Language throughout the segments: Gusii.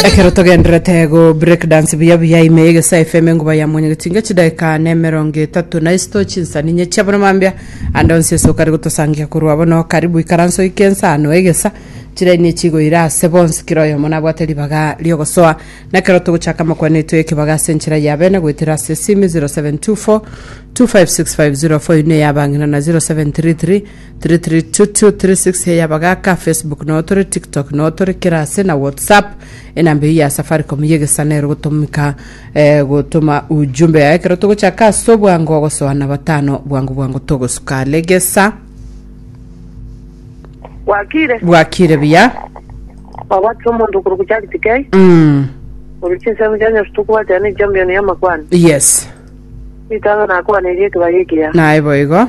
ekero togenderete go break dance buya buya ime ya egesae fm enguba ya mwenye getinga chidakika na emerongo etato na isito chinsani inye chia bono mambia ande onsi ase okare gotosangia korwa bono karibu ikaranso ike ensano egesa chiraini echigoira ase bonsi kera oyomo nabwate ribaga riogosoa na ekero togochaka amakwana etwe ekebaga ase enchera ya bene goetera ase esimi 0724 256504 ine ya bang'ina na 0733 Tiri tiri two two tiri six he yabagaka Facebook no tore TikTok no tore kirase na WhatsApp enamba ya Safaricom ye gesana ero gotomika eh, gotoma ujumbe yaye kero togochaka ase obwango gosoa na batano bwango bwango togosuka legesa gwakire bwakire buya wabwatire omonto okoro gochagiti kei mm. ori chinsemo chia nyasu tokobwatira ne champion ya makwani yes ritang'a nakoaneria ekebari ekiya naye boigo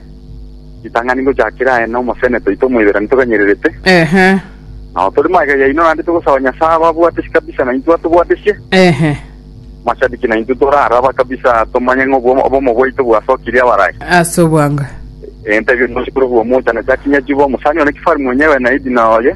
Ritang'ani ngochakera aye na omosene toito omoiberani toganyererete, Ehe. na otori magega yaino naende togosaba Nyasae ababwatesi kabisa na intwe atobwatesie. Ehe. Mashabiki na intwe tore araba kabisa tomanye ng'a obwo- obomo bwaito bwasokirie abarai. Ase obwango. Entebia nosikuru bw'omochando chakinya chibo, omosani one kifari mwenyewe na Edina oye,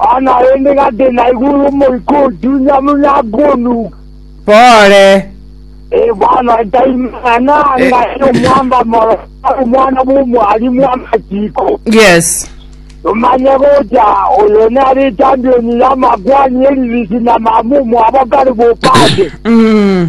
Aa naende gati naigwe ore omoika otunya buna akonuka. Pole. Ee, bono etaimana nanga ere omwamba moro, ore omwana bw'omwarimu amachiko. Yes. Nomanye gocha oyo nere echampioni y'amakwani eririchi na mama omwabo kare bopate. Mm.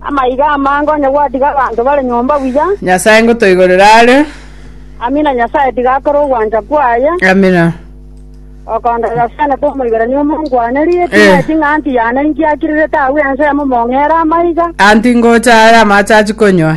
Amaiga amange onye gwatiga abanto bare nyomba buya. Nyasae ngotoigorere are. Amina Nyasae tiga akore ogwancha kwaye. Amina. Okonda Yosene komoigerania omonko wane rieti Eh. ng'eti ng'anti yane inki akirirete agwo ensemo mong'ere amaiga. Anti ngocha are amache achi konywa.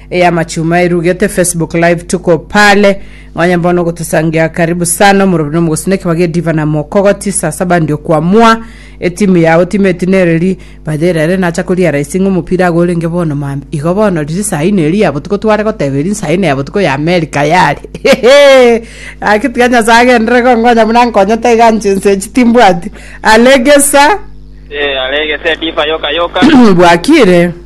Eya machuma erugete Facebook live tuko pale ng'onye mbono gotusangia karibu sana omorobi nomogosina ekebaga ediva na mokogoti saa saba ndio kwamua etimu yao timu eti nereri batherere nacha koria raisi ng'a omopira ago orenge bono mam igo bono riri saa ine eri ya botuko tware goteba eri saa ine ya botuko ya Amerika yare gaki tiga nyasae agenderere gonkonya buna ankonyete iga nche ense echi timbwati alegesa Eh, alegese ediva yoka yoka. bwakire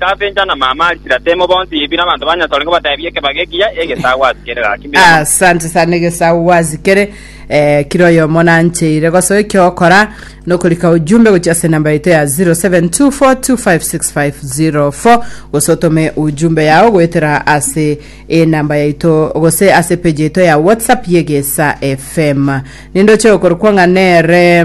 Tabenja na mama Arisiratemo bonsi Yebi nabanto ba Nyasae orenge batebie ekebago ekiya egesaa gwasikere gaki mbere mono. Asante sana egesagu gwasikere eh, kira oyomo nancheire gosoa ekiokora nokorika ujumbe gochia ase namba yaito ya 0724256504 gose otome ujumbe yao goetera ase enamba yaito gose ase page yaito ya whatsapp yegesa fm nindoche okorokwa ng'a nere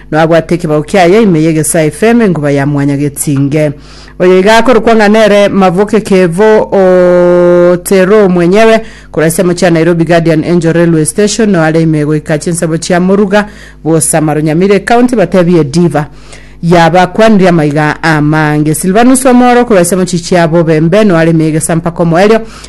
Nabwate ekebao kiaye ime y'egesaa efeme enguba ya mwanya getinge. Oyo iga akorokwa ng'a nere Mavuke Kevo Otero mwenyewe, korwa ensemo chia Nairobi Guardian Angel Railway Station no are ime goika chinsemo chia Muruga bw'Osamaro Nyamire County batebie Diva yabakwanire amaiga amange. Silvanus Omoro korwa ensemo chichia Bobembe no are ime y'egesaa mpaka omoerio.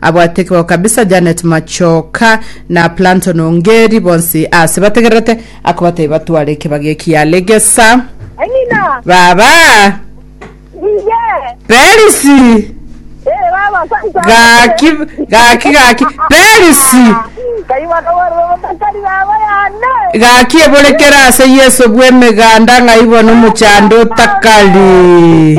Abwate kebao kabisa Janet Machoka na Planton Ongeri bonsi aase bategererete akobatebia batware ekebagi eki Yalegesa. Amina. Baba! Iye. Perisi! Eh, baba, santa. Gaki, gaki, gaki. Perisi! Kaiba kabarwa batakari baba yane. Gaki eborekere ase Yeso bw'emeganda ng'ai bono omochando otakari.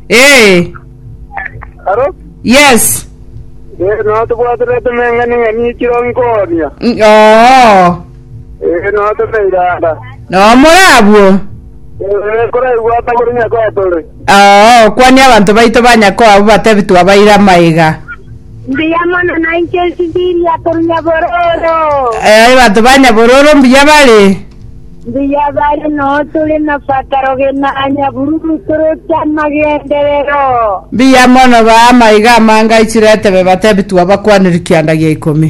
Ee, Aro? yes. Eh, no tobwaterete emeng'ani ng'ani ekiro nkonia. Mm, Oo, Eh, no tomeiranda. no more abwo. Eh, koraigwa atakore nyakotore. Oo, kwania abanto baito ba nyakoo abwo batebi twabaire amaiga. Mbuya mono nainche esibiri akorunya bororo. Ee, abanto ba nyabororo mbuya bare. Mbuya bare noo tore na fataro gena nyabururu toroche amagenderero. Mbuya mono ba amaiga amanga aichire etebe batebi twabakwaniri kianda gia ikomi.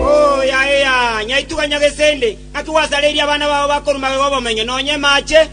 Oh, yaya, nyaituga Nyagesende, naki gwasareirie abana bao bakorua magega 'obomenyo, nonya emaache?